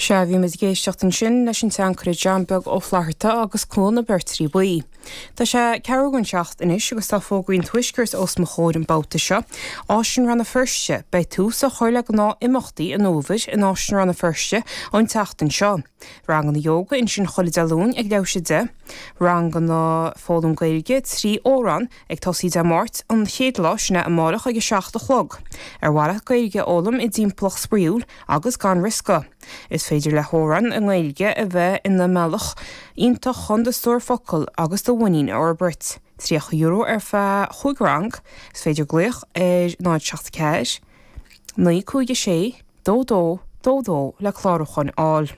Sea, bhí muid ag éisteacht ansin leis an tseanchara John Beag Ó Flatharta agus Cuan na Beirtrí Buí. Tá sé ceathrú don tseacht anois agus tá fógraí an tuaiscirt os mo chomhair an babhta seo. Áislann Rann na Feirste, beidh tús á chur le gnáthimeachtaí an fhómhair in Áislann Rann na Feirste an tseachtain seo. Ranganna Ióga, ansin chuile Dé Luain ag leathuair tar éis a 10, ranganna foghlaim Gaeilge trí amhrán ag tosaí Dé Máirt an chéad lá, sin é amárach ag 7 a chlog. Ar mhaith leat Gaeilge a fhoghlaim i dtimpeallacht spraíúil agus gan riosca? Is féidir le hamhráin i nGaeilge a bheith ina mbealach iontach chun do stór focal agus do mhuinín a fhorbairt. €30 ar feadh 5 rang. Is féidir glaoch ar 074. 956 22 22 le clárúchán a fháil.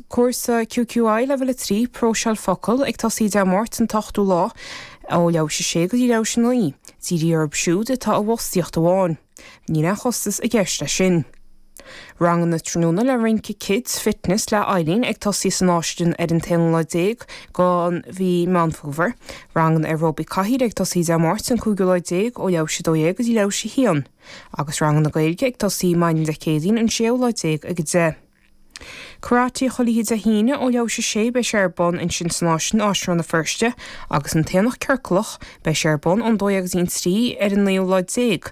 Cúrsa QQI Leibhéal 3, Próiseáil Focal, ag tosaí Dé Máirt an t-ochtú lá ó leathuair tar éis a 6 go dtí leathuair tar éis a 9. Dírithe orthu siúd atá i bhfostaíocht amháin. Níl aon chostas i gceist leis sin. Ranganna tráthnóna le rince Kids Fitness le Eileen ag tosaí san Áislann ar an t-aonú lá déag de mhí Meán Fómhair. Ranganna Aerobic Cathaoir ag tosaí Dé Máirt an cúigiú lá déag ó leathuair tar éis a 12 go dtí leathuair tar éis a haon. Agus ranganna Gaeilge ag tosaí maidin Dé Céadaoin an séú lá déag ag 10. Karate Chuile Oíche Dé hAoine ó leathuair tar éis a 6 beidh sé ar bun ansin san Áislann, Áislann Rann na Feirste. Agus an tAonach Ciorclach, beidh sé ar bun ón dó dhéag go dtí an trí ar an naoú lá déag.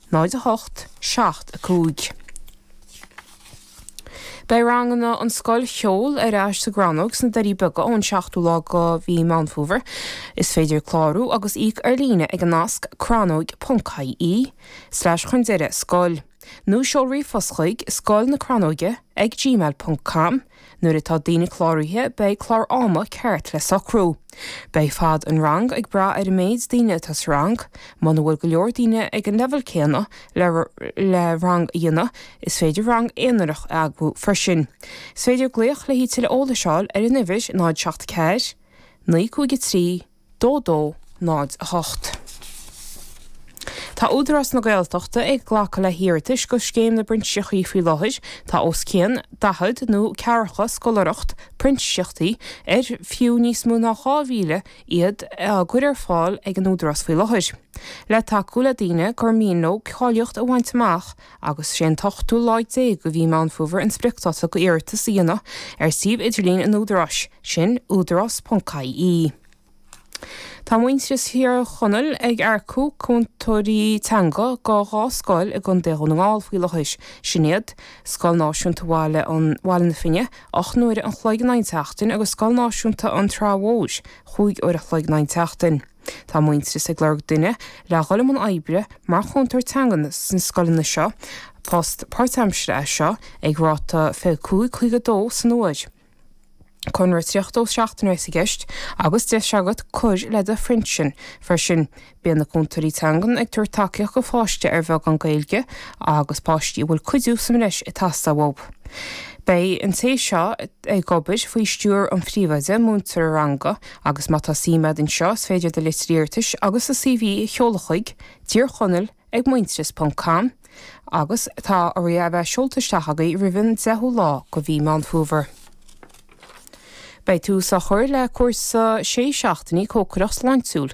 0 8 7 5 Beidh ranganna an scoil cheoil ar ais sa gCrannóg sna Doirí Beaga ón seachtú lá de mhí Meán Fómhair. Is féidir clárú agus íoc ar líne ag an nasc crannóg.ie slash chun deireadh scoil nó seol ríomhphost chuig, scoil na crannóige ag gmail ponc com. Nuair atá daoine cláraithe beidh clár ama ceart le socrú. Beidh fad an rang ag brath ar an méid daoine atá sa rang. Muna bhfuil go leor daoine ag an leibhéal céanna le rang a dhéanamh is féidir rang aonarach a eagrú freisin. Is féidir glaoch le tuilleadh eolais a fháil ar an uimhir 074953. dó dó náid a hocht. Tá Údarás na Gaeltachta ag glacadh le hiarratais do Scéim na bPrintíseachtaí faoi láthair. Tá os cionn daichead nó ceathracha scoláireacht printíseachtaí, ar fiú níos mó ná 2,000 iad, á gcur ar fáil ag an Údarás faoi láthair, le tacú le daoine gur mian leo cáilíocht a bhaint amach agus sé an t-ochtú lá déag de mhí Meán Fómhair an spriocdáta do iarratas a dhéanamh ar suíomh idirlín an Údaráis, sin údarás.ie. Tá Muintearas Thír Chonaill ag earcú cúntóirí teanga do dhá scoil i gContae Dhún na nGall faoi láthair, sin iad, Scoil Náisiúnta Bhaile an Bhaile na Finne, ocht n-uaire an chloig in aghaidh an tseachtain, agus Scoil Náisiúnta an tSratha Mhóir, chúig uair an chloig in aghaidh an tseachtain. Tá Muintearas ag lorg duine le dhul i mbun oibre mar chúntóir teanga sna scoileanna seo, post páirtaimseartha é seo ag ráta €25.52 san uair. Conradh 32 seachtaine a bheas i gceist agus deis agat cur le do phinsean freisin. Bíonn na cúntóirí teanga ag tabhairt tacaíocht do pháiste ar bheagán Gaeilge agus páistí a bhfuil cuidiú sa mbreis ag teastáil uathu. Beidh an té seo. ag obair faoi stiúir an phríomhoide, múinteoir ranga agus má tá suim agat anseo is féidir do litir iarratais agus do CV a sheoladh chuig, Tír Chonaill ag Muintearas ponc com, agus tá orthu a bheith seolta isteach agaibh roimh an 10ú lá de mhí Meán Fómhair. Beidh tús á chur le cúrsa sé seachtainí cócaireacht sláintiúil,